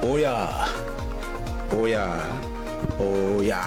oya oya oya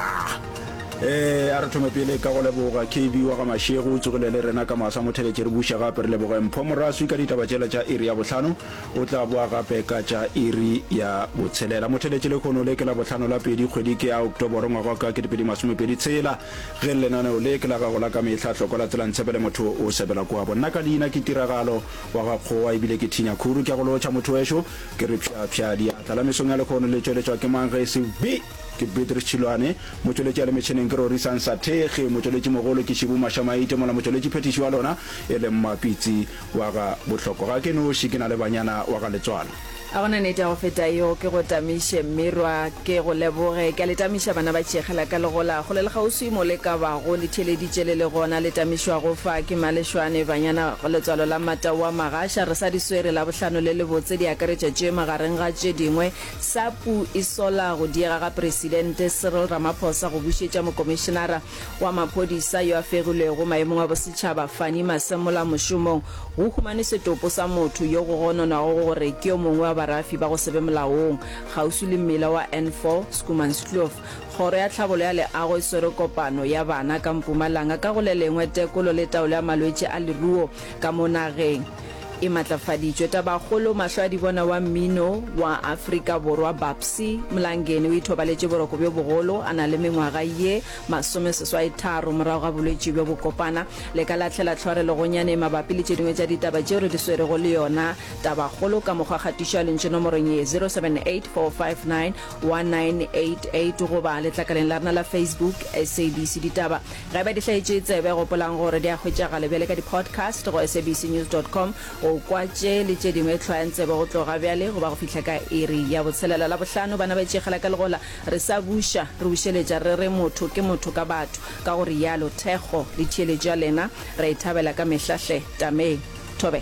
ee a re thome pele ka go leboga kb wa ga mašego o tsogile le rena ka masa motheletše re buša gape re leboge mpho moraswi ka ditaba tšela tša iri ya bohlano o tla boa gape ka tša iri ya botshelela motheletše le kgono le ke la bohlano la pedi kgwedi ke ya oktoboro ngwaga ka ke dipedi masomepedi tshela ge lenaneo le ke la gago la ka mehla tlhoko la tselang tshepele motho o sebela kwabo nna ka leina ke tiragalo Wa gakgowa ebile ke Tina Khuru. Ke a go lotšha mothoweso. Ke re phya phya diatla. La mesong ya lekgono le tšweletšwa ke mang ge e se be ke Beatrice Tšhilwane. Motšweletši ya le metšheneng ke Rorisang Sathekge. Motšweletši mogolo ke Shibu Masha Maite mola motšweletši phethiši wa lona e le Mmapitsi wa ga Bohloko. Ga ke noši ke na le banyana wa ga Letswalo. A go na nete ya go feta yeo? Ke go tamiše, mmirwa, ke go leboge. Ke a le tamiša, bana ba tšhekga la ka, le gola kgole le kgauswi mo le ka bago. Le theeleditše le le gona, le tamišwago fa ke malešwane, banyana, letswalo la Mataoa Magasha. Re sa di swere, Labohlano le lebotse, di akaretša tše, magareng ga tše dingwe, SAPU e sola go diega ga Presidente Cyril Ramaphosa go bušetša Mokomišenara wa maphodisa yo a fegilwego maemong a bosetšhaba Fannie Masemola mošomong, go humane setopo sa motho yo go gononwago gore ke yo mongwe wa barafi ba go se be molaong kgauswi le mmila wa N4, Schoemanskloof. Kgoro ya Tlhabolo ya Leago e swere kopano ya bana ka Mpumalanga ka go le lengwe tekolo le taolo ya malwetši a leruo ka mo nageng. E matlafaditšwe tabakgolo mahlo a dibona wa mmino wa Afrika Borwa Babsy Mlangeni o ithobaletše boroko bjo bogolo a na le mengwaga ye masomeseswai tharo morago ga bolwetši bjo bo kopana le ka lahlela tlhore legonyane mabapi le tše dingwe tša ditaba tšeo re di swerego le yona tabakgolo ka mokgwa kgatišo ya lentšu nomorong ye 0784591988 goba letlakaleng la rena la Facebook SABC Ditaba Ge e ba di hlaetše tsebe, gopolang gore di a hwetšagala bjale ka di-podcast go sabcnews dot com. O kwa tše le tše dingwe hlwayang tsebe go tloga bjale go ba go fihla ka iri ya botshelela. Labohlano, bana ba itšegela ka legola, re sa buša, re bušeletša re re motho ke motho ka batho, ka go rialo Thekgo. Le theeletšo ya lena ra e thabela ka mehla hle. Tamee. Thobe.